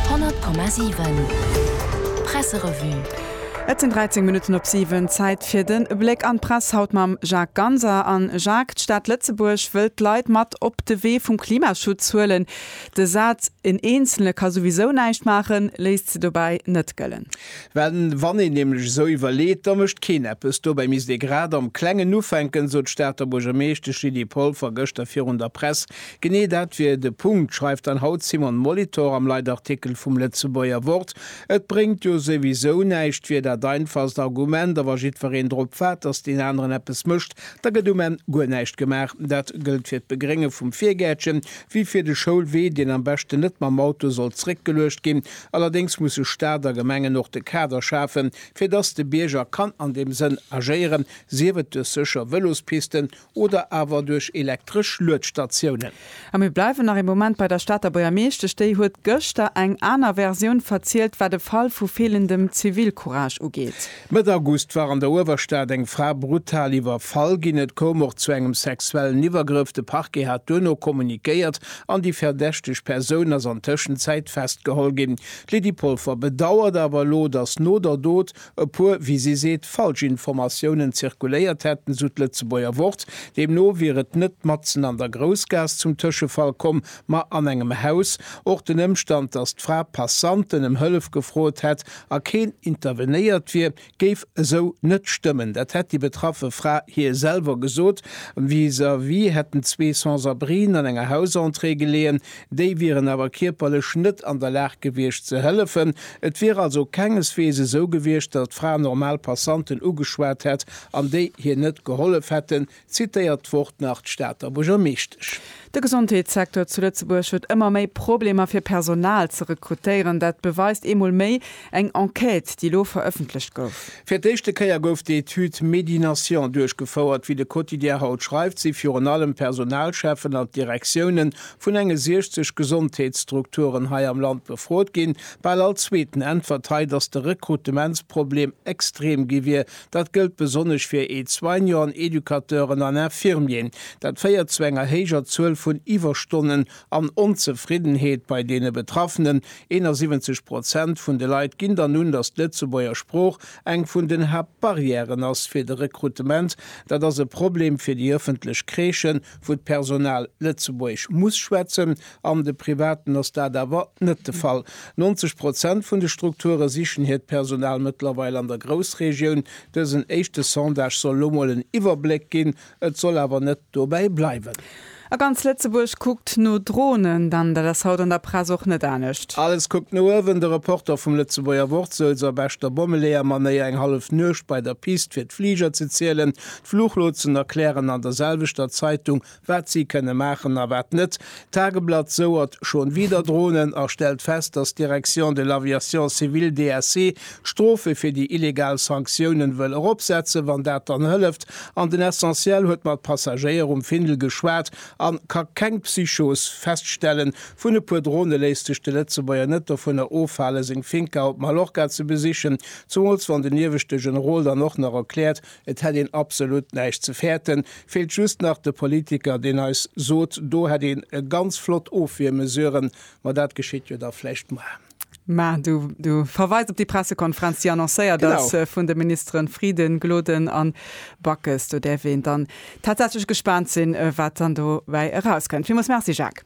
100,7 Presserevue Et sinn 13 Minutten op 7, Zäit fir de Bléck an d'Press, haut mam Jacques Ganser. An Jacques, d'Stad Lëtzebuerg wëllt d'Leit mat op de Wee vum Klimaschutz huelen. De Saz en Eenzelne ka souwisou näischt maachen, léisst se dobäi net gëllen. Well wann een nämlech esou iwwerleet, da mécht keen eppes. Dobäi misst ee grad am Klengen ufänken, sot d'Stater Buergermeeschtesch Lydie Polfer gëschter virun der Press. Genee dat wier de Punkt, schreift dann haut d'Simone Molitor am Leitartikel vum Lëtzebuerger Wort. Et bréngt jo souwisou näischt, wier dat einfachst Argument. A wa jiddwereen drop waart, datt deen aneren eppes mécht, da gëtt um Enn guer näischt gemaach. Dat gëllt fir d'Begrénge vum Virgäertchen wéi fir de Schoulwee, deen am beschten net mam Auto soll zréckgeluecht ginn. Allerdéngs musse Staat a Gemengen och de Kader schafen, fir datt de Bierger kann an deem Sënn agéieren, sief et duerch sécher Vëlospisten Oder awer duerch elektresch Luedstatiounen. A mir bleiwen nach ee Moment bei der Stater Buergermeeschtesch. Déi huet gëschter eng aner Versioun verzielt, wat e Fall vu feelendem Zivilcourage ugeet. Mëtt August war an der Uewerstad eng Fra brutal iwwerfall ginn. Et koum och zu engem sexuellen Iwwergrëff. De Parquet hat duerno kommunikéiert an déi verdächteg Persoun ass an Tëschenzäit festgeholl ginn. D'Lydie Polfer bedauert awer elo, datt no der Dot, e puer, wéi si seet, falsch Informatiounen zirkuléiert hätten, esou d'Lëtzebuerger Wort. Deemno wier et net matzen an der Groussgaass zum Tëschefall komm, ma an engem Haus. Och den Ëmstand, datt d'Fra Passanten ëm Hëllef gefrot hätt a keen intervenéiert wier, géif esou net stëmmen. Dat hätt déi betraffe Fra hir selwer gesot. Vis-à-vis hätten zwee Sans-abrien an enger Hausentrée geleeën, Déi wieren awer kierperlech net an der Lag gewiescht ze hëllefen. Et wier also kengeswees esou gewiescht, datt d'Fra normal Passanten ugeschwat hätt an déi hir net gehollef hätten, zitéiert d'Wort nach d'Stater Buergermeeschtesch. De Gesondheetssecteur zu Lëtzebuerg huet ëmmer méi Problemer fir Personal ze rekrutéieren. Dat beweist eemol méi, Eng Enquête, déi elo verëffentlecht gouf. Fir d'éischte Kéier gouf d'Etüd Medination duerchgefouert. Wéi de Quotidien haut schreift, si virun allem d'Personalcheffen an d'Direktioune vun enge 60 Gesondheetsstrukturen hei am Land befrot ginn. Bal all Zweeten äntwert hei, datt de Rekrutementsproblem extrem gi wier. Dat gëllt besonnesch fir Aide-soignanten, Educateuren an Infirmieren. Dat féiert zu enger héijer Zuel vun Iwwerstonnen. An Onzefriddenheet bei deene Betraffenen, 71 Prozent vun de Leit ginn dann un, datt d'Lëtzebuerger Sprooch eng vun den Haaptbarrièren ass fir de Rekrutement. Dat ass e Problem fir déi ëffentlech Kreeschen, wou d'Personal Lëtzebuergesch muss schwätzen. An de Privaten ass dat awer net de Fall. 90 Prozent vun de Strukture sichen hiert Personal mëttlerweil an der Groussregioun. Dësen éischte Sondage soll lo mol en Iwwerbléck ginn, Et soll awer net dobäi bleiwen. A ganz Lëtzebuerg kuckt no Dronen, denn dat ass haut an der Press och net anescht. Alles kuckt no uewen, de Reporter vum Lëtzebuerger Wort souz a beschter Bommeleeër-Manéier eng hallef Nuecht bei der Pist fir d'Fliger ze zielen. D'Fluchlotsen erklären an der selwechter Zeitung, wat si kënne maachen a wat net. D'Tageblatt souert Schon wieder Drohnen a stellt fest, dass d'Direction de l'Aviation Civile, DAC, d'Strofe fir déi illegal Sanktiounen wëll eropsetzen, wann dat dann hëlleft. An den Essentiel huet mat Passagéier um Findel geschwat a ka keng Psychos feststellen. Vun e puer Drone léisst sech de Lëtzebuerger net dovunner ofhalen, seng Finca op Mallorca ze besichen, zumools wann den ieweschte Generol dann och nach erkläert, Et hätt een absolut näischt ze fäerten. Feelt just nach de Politiker, deen eis sot, do hätt een ganz flott Ofwiermesuren, ma dat geschitt jo da vläicht muer. Mä du verweis op déi Pressekonferenz, déi annoncéiert ass vun de Ministeren Frieden, Gloden a Backes. Do däerf een dann tatsächlech gespaant sinn, wat dann dobäi erauskënnt. Villmools Merci, Jacques.